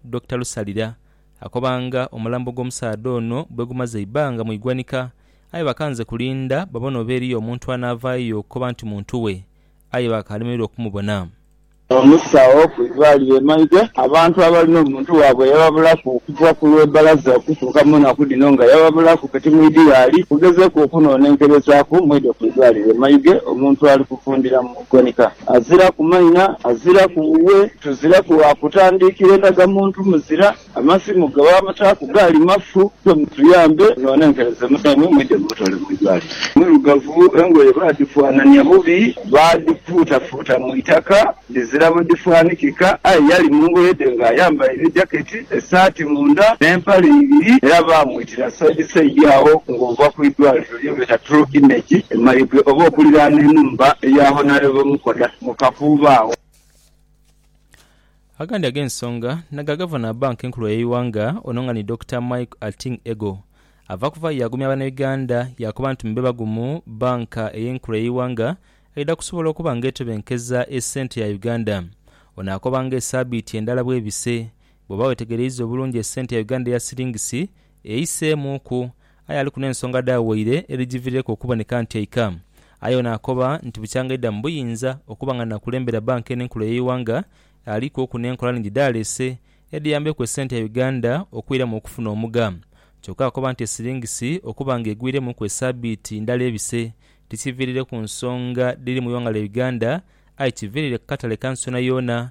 Dokita Lusalira akoba nga omulambo gw'omusaadha ono bwegumaze eibanga mu igwanika aye bakanze kulinda babone oba eriyo omuntu anaavaayo okukoba nti muntu we aye baakalemererwa okumubona. Omusawo ku idwaliro e Maidhe abantu abalina omuntu waabwe eyababulaku okuva ku lwe balaza okutuuka mu naku dhino nga yababulaku kati mwidhighaali kugezeku okunonenkerezaaku mwidho ku idwaliro e Maidhe omuntu ali kuvundhiramu. Gwanika aziraku maina, aziraku wuwe, tuziraku wa kutandiikira endagamuntu, muzira. Amasimu ge baabataaku gaali mafu. Ife mutuyambe munonenkereze munaimwe mwidhe mumutwale mu idwaliro. Mwirugavu, engoye baadhifuanania bubi, baadhifuutafuuta mu itaka dhizira bwe dhifaanikika. Aye yali mu ngoye dhe ng'ayambaire ejaketi, esaati munda, n'empale ibiri. Era baamwitira saidi saidi agho ng'ova ku idwaliro. Yogera True Image e Mayuge oba okuliraana enhumba eya Honourable Mukoda mu Kakuubo agho. Agandi ag'ensonga naga Gavana wa Banka enkulu ey'eighanga ono nga ni Dokita Mike Ating Ego ava kuvayo yagumya banauganda yakoba nti mube bagumu banka eye enkulu ey'eighanga eidha kusobola okuba nga etebenkeza esente ya Uganda ono akoba nga esabiiti endala bwebise bwoba wetegereiza obulungi esente ya Uganda eya silingisi Eiseemuuku, aye aliku n'ensonga dha waire edhigivirireku okuboneka nti eika. Aye ono akoba nti bukyanga aidha mu buyinza okuba nga nakulembera bbanka eno enkulu ey'eighanga, aliku oku n'enkola nhingi dhaleese edhiyambeku esente ya Uganda okwiramu okufuna omugha. Kyokka akoba nti esiringisi okuba nga egwiremuku esaabiiti ndala ebise tikivirireku nsonga dhiri mu ighanga lya Uganda aye kiviriire ku katale ka nsi yoonayoona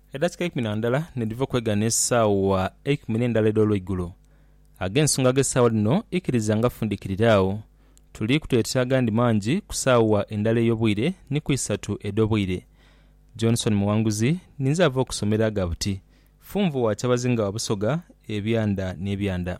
Edakika eikumi na ndala ni dhiva okwegana esaawa eikumi ne ndala edh'olweigulo. Ag'ensonga ag'esaawa dhino ikiriza nga fundikirire agho. Tuli kutoyetera agandi mangi ku saawa endala ey'obwire ni ku isatu edh'obwire. Johnson Muwanguzi ninze ava okusomera aga buti, Funvu wa Kyabazinga wa Busoga, ebyanda n'ebyanda.